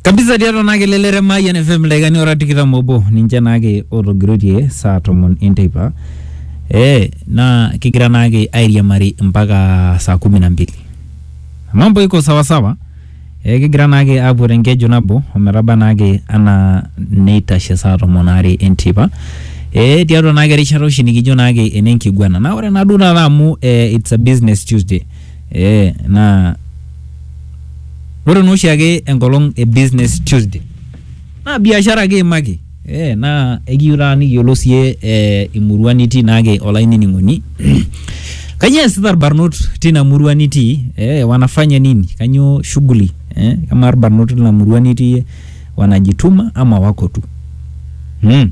kabisa tiatua naa kelelere Mayian FM dakikani ora tikitam obo ninche naake otogiroitie saa tomon enteipa eh, naa kigira naake airiamari mpaka saa kumi na mbili mambo iko sawasawa eh, kigira naake aapuo tenkeju nabo ometaba naake anaa neitashe saa tomon aare enteipa eh, tiatua naake erishata oshi nikijo naake enenkiguana naa ore naa duo taata amu eh, it's a business Tuesday Eh, naa ore naa oshiake enkolong e business Tuesday naa biashara kiimaki eh, naa ekiyieu taata nikiyiolou siiyie eh, imurua nitii naake olainining'oni kanyio eesita irbarnot tina murua nitii eh, wanafanya nini kanyio shughuli eh, amaa irbarnot tina murua nitii wanajituma ama wako tu mm.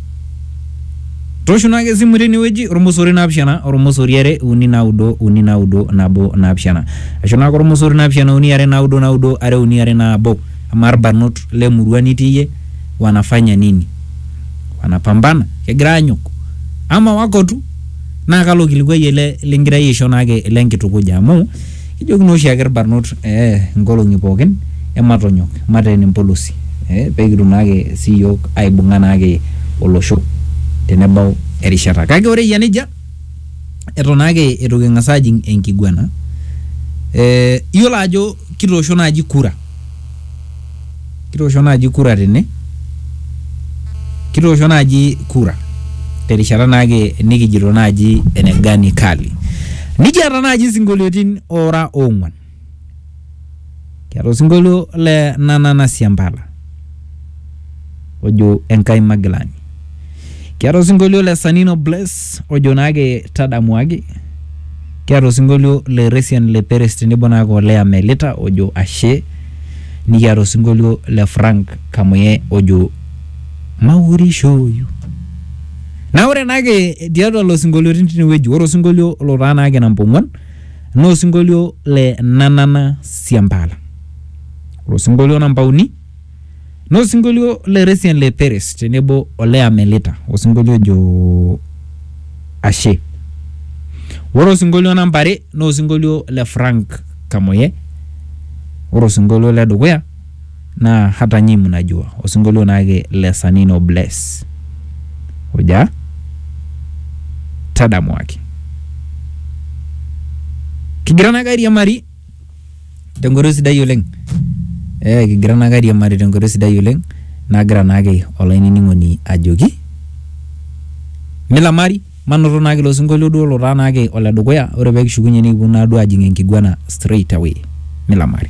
Toshuna ake esimu tenewueji ormosori naapishana ormosori are uni naudo uni naudo nabo naapishana ashu naake ormosori naapishana uni are naudo naudo are uni are nabo amaa irbarnot lemurua nitii iyie wanafanya nini wanapambana kegira aanyok ama wako tu naa kalo kilikuai ele lingirai aisho naake lenkitukuja amu Kijoki naa oshiake irbarnot ee nkolong'i pookin ematonyok mateen empolosi ee pekitum naake sii yiok aibung'a naake olosho tenebau erishata. Kake ore eyia nejia eton naake eitu king'as ajing enkiguana ee iyiolo ajo kitoosho naaji kura. kitoosho naaji kura tene kitoosho naaji kura terishata naake nikijito naaji ene gani kali nikiata naaji isinkolioitin ora ong'uan kiata osinkolio le nanana siampala ojo Enkai Magilani. Kiata osinkolio le Sanino Bless ojo naake tadamuaki. Kiata osinkolio le Resian le Peres tenebo naake o Lea Melita ojo ashe. Nikiata osinkolio le Frank Kamuye ojo maurishoyu. Naa ore naake tiatua lelo sinkolioitin tinewueji, ore osinkolio lotaa naake namba ong'uan naa osinkolio le Nanana Siampala. Ore osinkolio namba uni Naa osinkolio le Resian le Peres tenebo ole Amelita osinkolio ojo Ashe. Ore osinkolio namba are naa osinkolio le Frank Kamoye. Ore osinkolio le dukuya naa hata nyinyi mnajua osinkolio naake le Sanino Bless oja tadamuaki. Kigira naake airiamari Te nkoitoi sidai oleng, ee kigira naake airiamari te nkoitoi sidai oleng nagira naake olainining'oni ajoki milamari manoto naake ilo sinkolio duo lotaa naake ole dukuya ore pee kishukunye nikipuo naaduo ajing enkiguana straight away milamari.